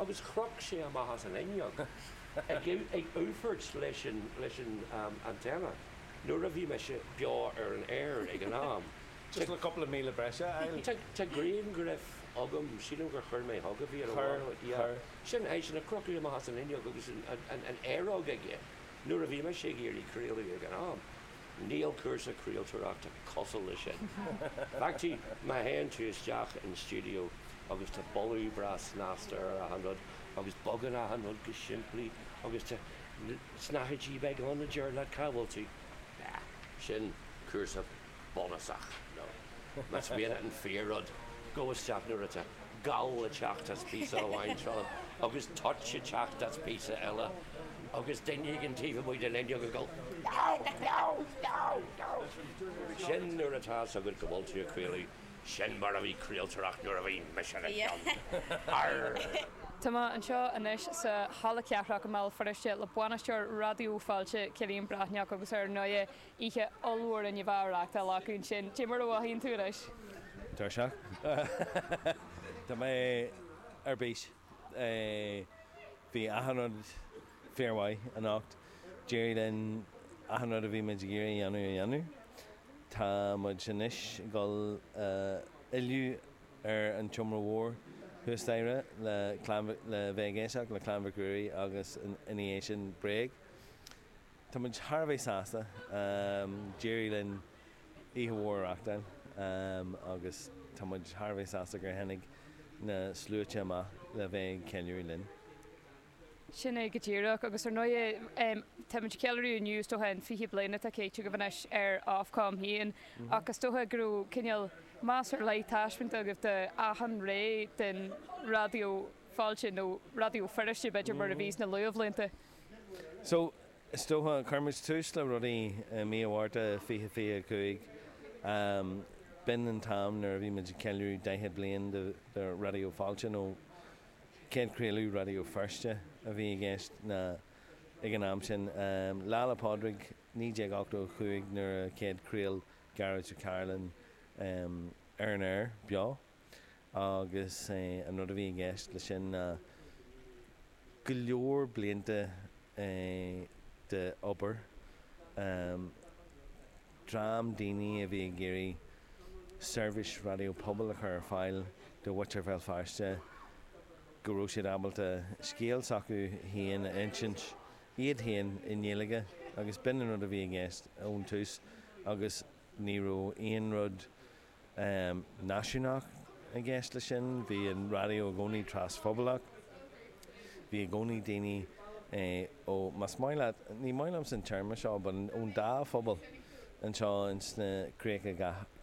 agus chroch sé amach as an fhuinneog, ag únfairt leis an antenna, nuair a bhí mise beo ar an aer ag an am. Just le cúpla míle breise a fháil. Tá grianghraf agam, sílim gur chuir mé chugat, a bhí ar a bharr. Chuir, chuir. Sin eisean ag crochadh amach as an fhuinneog agus an aeróg aige nuair a bhí mise ag iarraidh craoladh ag an am. Níl cúrsa craoltóireachta cosúil leis sin. Feictí, má théann tú isteach in stiúideo agus tá boladh breá snasta ar achan rud agus bogann achan rud go simplí agus tá snáthaidí beaga ann a deir leat cá bhfuil tú, nah, sin cúrsa bunúsach, nó más mian leat an fíor-rud, gabh isteach nuair atá. gal ag teacht as píosa amháin seo agus toit ag teacht as píosa eile agus duine éigin taobh amuigh den fhuinneog ag dul Gabhal! Gabhal! Gabhal! Gabhal! Sin nuair atá 's agat go bhfuil tú ag craoladh, sin mar a bhí craoltóireacht nuair a bhí mise ag ceann! Arrgh! Tá mé anseo anois sa Halla Cathrach i mBéal Feirste le bainisteoir Raidió Fáilte, Cillian Breathnach, agus ar ndóigh Oíche ollmhór inniu a reachtáladh ansin, cé mar a mhothaíonn tú anois? Tuirseach. Tá mé ar bís. Bhí achan rud fíormhaith anocht. D'éirigh linn achan rud a bhí muid ag iarraidh a dhéanamh a dhéanamh. Tá muid anois ag dul a fhilleadh ar an tseomra mhór thuas staighre le clann le bheith ag éisteacht le Clann Mhic Ruairí agus ina dhiaidh sin Bréag. Tá muid thar a bheith sásta. D'éirigh linn oíche mhór a reachtáil agus tá muid thar a bheith sásta gur tháinig na sluaite amach le bheith ag ceiliúradh linn. Sin é go díreach. Agus ar ndóigh tá muid ag ceiliúradh inniu is dócha an fiche bliain atá caite agaibh anois ar Ofcom féin ach is dócha go raibh cineál, meas ar leith taispeanta agaibh do achan ré den Raidió Fáilte nó Raidió Feirste b'fhéidir mar a bhí sna luathbhlianta. So, is dócha, chuir muid tús le rudaí i mí an Mhárta fiche fiche a cúig. B'in an t-am nuair a bhí muid ag ceiliúradh daichead bliain de Raidió Fáilte, nó céad chraoladh Raidió Feirste a bhí i gceist ag an am sin. Lá 'le Pádraig naoi déag ochtó a cúig nuair a céad chraol Gearóid Ó Cairealláin ar an aer beo. agus an rud a bhí i gceist le sin ná go leor blianta de obair dream daoine a bhí ag iarraidh seirbhís raidió pobail a chur ar fáil do mhuintir Bhéal Feirste go raibh siad ábalta scéal s'acu féin a insint, iad féin i nGaeilge agus b'in an rud a bhí i gceist ón tús agus ní raibh aon rud náisiúnach i gceist leis sin. Bhí an raidió i gcónaí trasphobalach. Bhí i gcónaí daoine ó, más maith leat, ní maith liomsa an téarma seo, but ón dá phobal anseo ins na Críocha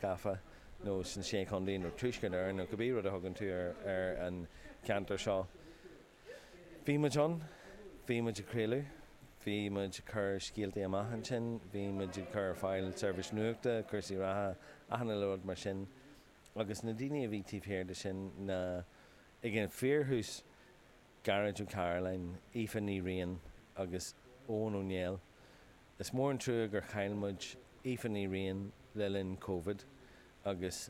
Gafa nó sna Sé Chontae nó Tuaisceart Éireann nó cibé rud a thugann tú ar an cheantar seo. Bhí muid ann. Bhí muid ag craoladh. Bhí muid ag cur scéaltaí amach ansin. Bhí muid ag cur ar fáil seirbhís nuachta, cúrsaí reatha, achan uile rud mar sin. Agus na daoine a bhí taobh thiar de sin ná, ag an fíorthús, Gearóid Ó Cairealláin, Aoife Ní Riain agus Eoghan Ó Néill. Is mór an trua gur chaill muid Aoife Ní Riain le linn Covid agus.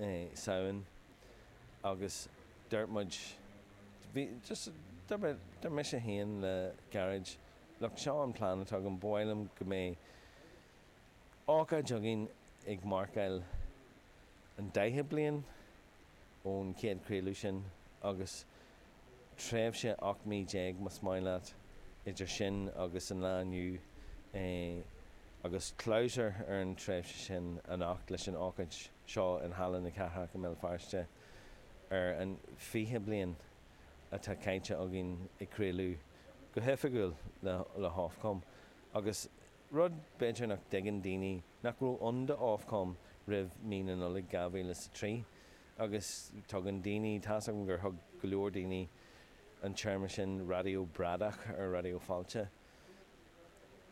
i Samhain agus dúirt muid, dúirt mise féin le Gearóid, look, seo an plean atá agam, ba mhaith liom go mbeidh ócáid againn ag marcáil an daichead bliain ón chéad chraoladh sin agus, tréimhse 18 mí más maith leat, idir sin agus an lá inniu, agus clabhsúr ar an tréimhse sin anocht leis an ócáid seo in Halla na Cathrach i mBéal Feirste ar an 20 bliain atá caite againn ag craoladh go hoifigiúil le hOfcom agus, rud b'fhéidir nach dtuigeann daoine, nach raibh ann do Ofcom roimh mí na Nollag 2003. Agus tugann daoine, tá's agam gur thug go leor daoine an téarma sin raidió bradach ar Raidió Fáilte.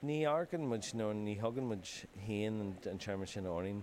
Ní amharcann muid, nó ní thugann muid féin an téarma sin orainn.